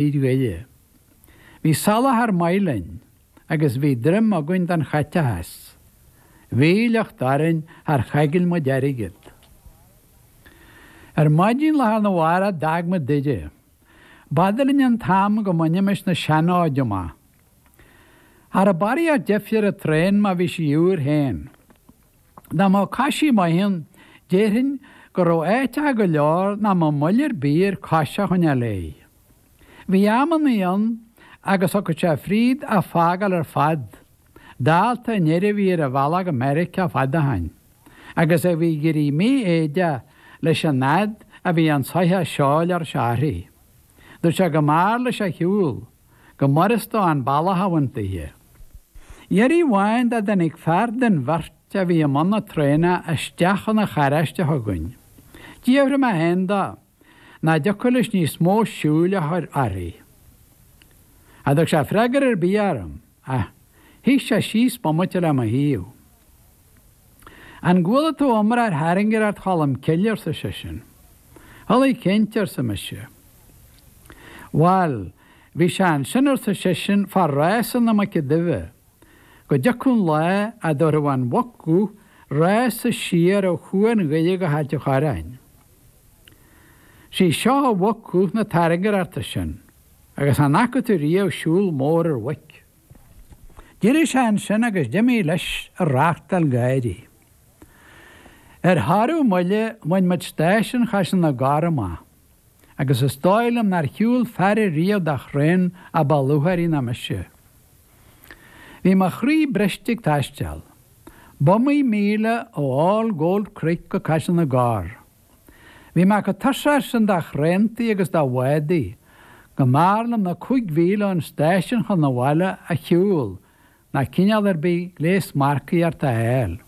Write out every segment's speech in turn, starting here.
thír eile. Bhí soláthar maith linn agus bhí droim againn don chaiteachas a bhí le theacht orainn. Char choigil muid airgead. Ar maidin lá arna mhárach d'fhág muid Doire. B'fhada linn an t-am go mbainimis na seanfhóid amach. Cha raibh barraíocht deifir ar an traen má bhí sí úr féin. Dá mbeadh coisí maith ann, déarfainn go raibh áiteacha go leor nach mbeadh moill ar bith air cos a choinneáil léi. Bhí amannaí ann agus thiocfadh sé fríd a fágáil ar fad, dálta an fhir a bhí ar a bhealach go Meiriceá fad ó shin, agus a bhí ag éirí mífhoighdeach leis an fhad a bhí an soitheach seoil ar a shárthaí. Dúirt sé go mb'fhearr leis a shiúl. go mb'fhurast dó an bealach a bhaint daoithe. Iarraidh amháin dá dtáinig fear den bheirt a bhí i mbun na traenna isteach chun an charráiste chugainn. D'fhiafraigh mé féin de, nach dtiocfadh leis níos mó siúil a chur uirthi. Cha dtug sé freagra ar bith orm, ach shuigh sé síos bomaite le mo thaobh. An gcuala tú iomrá ar thairngireacht Cholm Cille? arsa seisean. Chuala cinnte, arsa mise. Bhail, bhí sé ansin, arsa seisean, fá rása na Muice Duibhe, go dtiocfadh an lá a dtabharfadh an mhuc dhubh rása siar ó Chuan Dhoire go hAilt an Chorráin. 'Sí seo an mhuc dhubh na tairngireachta sin, agus an fhaca tú riamh siúl mór ar mhuic? D'éirigh sé ansin agus d'imigh leis ag reachtáil gáirí. Ar thoradh moille, bhain muid stáisiún Chaiseal na gCorr amach, agus is dóigh liom nár shiúil fear ariamh de thraein a ba lúcháirí ná mise. Bhí mo chroí briste ag taisteal. B'iomaí míle ó All Gold Creek go Caiseal na gCorr. Bhí mé chomh tuirseach sin de thraentaí agus de bhádaí, go mb'fhearr liom na cúig mhíle ón stáisiún chun an bhaile a shiúl ná cineál ar bith gléas marcaíochta a fháil.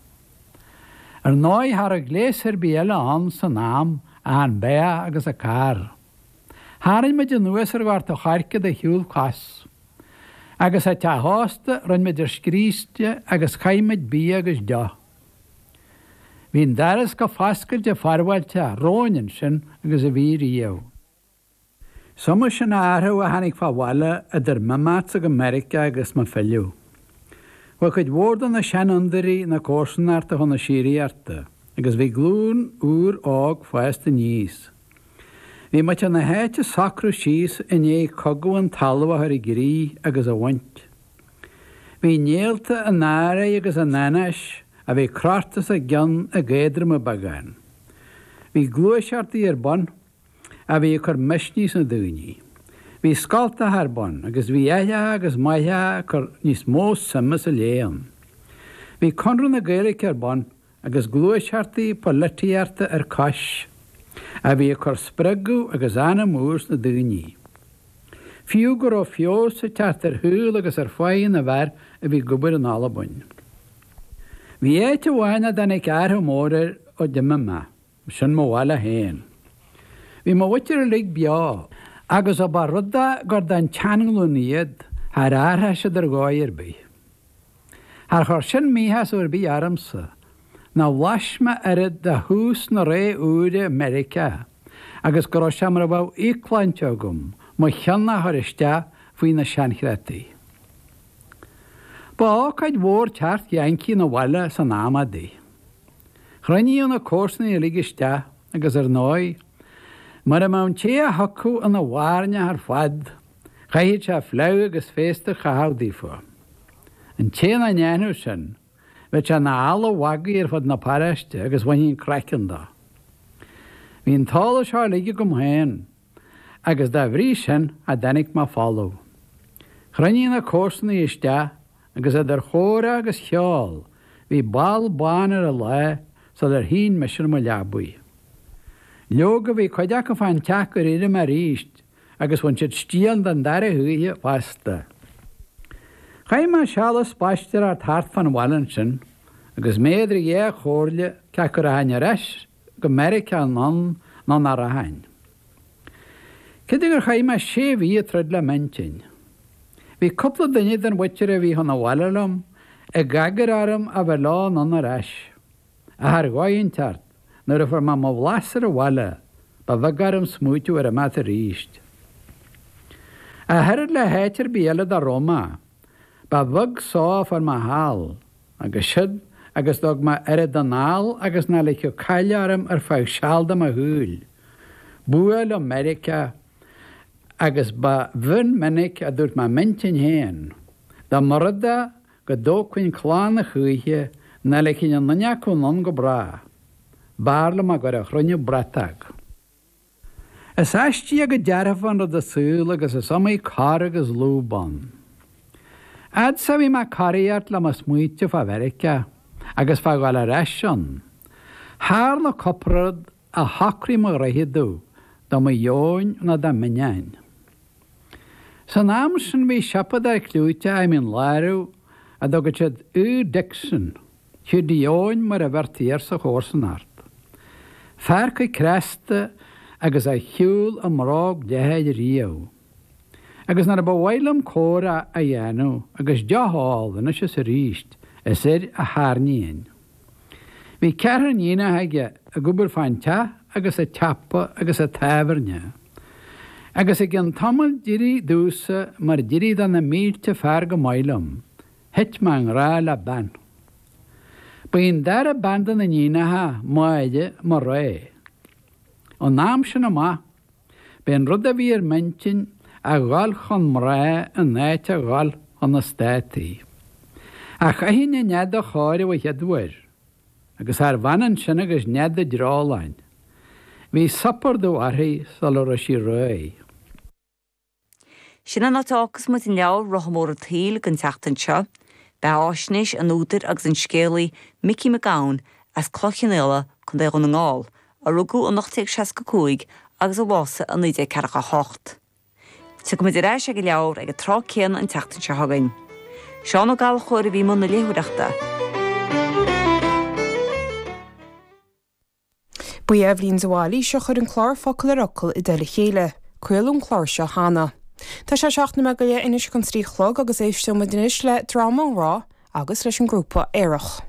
Ar ndóigh, cha raibh gléas ar bith eile ann san am, ach an beathach agus an carr. Tharraing muid anuas ar Ghort an Choirce de shiúl cos. Agus, sa teach ósta, rinn muid ár scríste agus chaith muid bia agus deoch. Bhí an doras chomh foscailte forbháilteach romhainn ansin agus a bhí riamh. Is iomaí sin athrú a tháinig fá bhaile idir m'imeachtsa go Meiriceá agus mo philleadh. Chuaigh cuid mhór de na seanfhondúirí na comharsanachta chun na síoraíochta agus bhí glúin úr óg fásta aníos. Bhí muintir na háite ag socrú síos i ndiaidh Cogadh an Talaimh a chur i gcrích agus a bhaint. Bhí néalta an anró agus an anáis a bhí crochta os a gcionn ag éadromú beagán. Bhí gluaiseachtaí ar bun a bhí ag cur misnigh sna daoine. Bhí scoltacha ar bun agus bhí aithreacha agus máithreacha ag cur níos mó suime sa léann. Bhí Conradh na Gaeilge ar bun agus gluaiseachtaí polaitíochta ar cois, a bhí ag cur spreagadh agus anam úr sna daoine. Fiú go raibh feabhas ag teacht ar shaol agus ar pháighe na bhfear a bhí ag obair in Albain. Bhí áit amháin nach dtáinig athrú mór air ó d'imigh mé. B'shin mo bhaile féin. Bhí mo mhuintir uilig beo, agus ó ba rud é gur den tseanghlúin iad, char athraigh siad ar dhóigh ar bith. Char chuir sin míshásamh ar bith ormsa, nó bhlais mé oiread de thús na ré úire i Meiriceá agus go raibh sé mar a bheadh íocshláinte agam mo cheann a chur isteach faoi na seanchreataí. Ba ócáid mhór teacht Yankee 'na bhaile san am adaí. Chruinníodh na comharsanaigh uilig isteach agus ar ndóigh, mura mbeadh an té a thiocfadh ina bhairneach ar fad, chaithfeadh sé fleadh agus féasta a chaitheamh daofa. An té nach ndéanfadh sin, bheadh sé ina eala mhagaidh ar fud na paráiste agus bhainfí an craiceann de. Bhí an t-eolas seo uilig agam féin. agus dá bhrí sin cha dtáinig mé folamh. Chruinnigh na comharsanaigh isteach agus idir chomhrá agus cheol bhí ball bán ar an lá sular shín mise ar mo leabaidh. Leoga bhí cuid acu fán teach gur éirigh mé arís agus bhain siad stiall den dara hoíche fosta. Chaith mé seal ag spaisteoireacht thart fán bhaile ansin agus mé idir dhá chomhairle cé acu a rachainn ar ais go Meiriceá anonn nó nach rachainn. Cé de gur chaith mé sé mhí ag troid le m'intinn, bhí cúpla duine den mhuintir a bhí chun an bhaile liom ag agair orm a bheith leo anonn ar ais. Ach ar dhóigh inteacht, nuair a fuair mé mo bhlas ar an bhaile, ba bheag orm smaoitiú ar imeacht arís. Ach oiread le háit ar bith eile dá raibh mé, ba bheag só a fuair mé thall. agus siúd agus go dtug mé oiread anall agus nach ligfeadh caill orm ar feadh seal de mo shaol. B'fhuath liom Meiriceá agus ba mhinic a dúirt mé i m'intinn féin, dá mba rud é go dtógfainn clann a choíche, nach ligfinn aon duine acu anonn go bráth. B'fhearr liom a gcur a chruinniú bratóg. Is aisteach go dearfa an rud an saol agus is iomaí cor agus lúb ann. Fhad 's a bhí mé ag coraíocht le mo smaointe fá Mheiriceá agus fá ghabháil ar ais ann, tharla cúpla rud a shocraigh mo ród domh de mo dheoin nó de m'ainneoin. San am sin bhí siopadóir cliúiteach i Mín Lárach a dtugadh siad Hugh Dixon. Hiúdaí Eoin, mar a bheirtí air sa chomharsanacht, fear chomh cneasta agus a shiúil i mbróg leathair riamh. Agus nuair a ba mhaith liom comhrá a dhéanamh agus deoch a fháil, anois is arís, is air a tharraingínn. Bhí ceathrar níonacha aige ag obair fán teach agus sa tsiopa agus sa tábhairne. Agus i gcionn tamaill d'éirigh domhsa mar d'éirigh do na mílte fear chomh maith liom, Thit mé i ngrá le bean. Ba í an dara bean de na níonacha, Máire, mo rogha. Ón am sin amach, b'é an rud a bhí ar m'intinn a dhul chun mná in áit a dhul chun na Státaí. Ach chaithfinn an nead a chóiriú an chéad uair, agus charbh ionann sin agus nead an dreoláin. Bhí supardú uirthi sula raibh sí réidh. Sin an áit a fhágfas muid an leabhar Rotha Mór an tSaoil den tseachtain seo. Beathaisnéis an údair agus an scéalaí Micí Mac Gabhann as Cloich Cheann Fhaola, Co. Dhún na nGall, a rugadh in 1865 agus a bhásaigh in 1948. Tiocfaidh muid ar ais ag an leabhar ag an tráth céanna an tseachtain seo chugainn. Seán Ó Gallchóir a bhí i mbun na léitheoireachta. Ba í Eibhlín de Bhailís a chuir an clár Focal ar Fhocal i dtoll a chéile. Craoladh an clár seo cheana. Tá sé seacht nóiméad go leith anois chun a trí a chlog agus éisteoimid anois le dráma á rá agus leis an ghrúpa Aerach.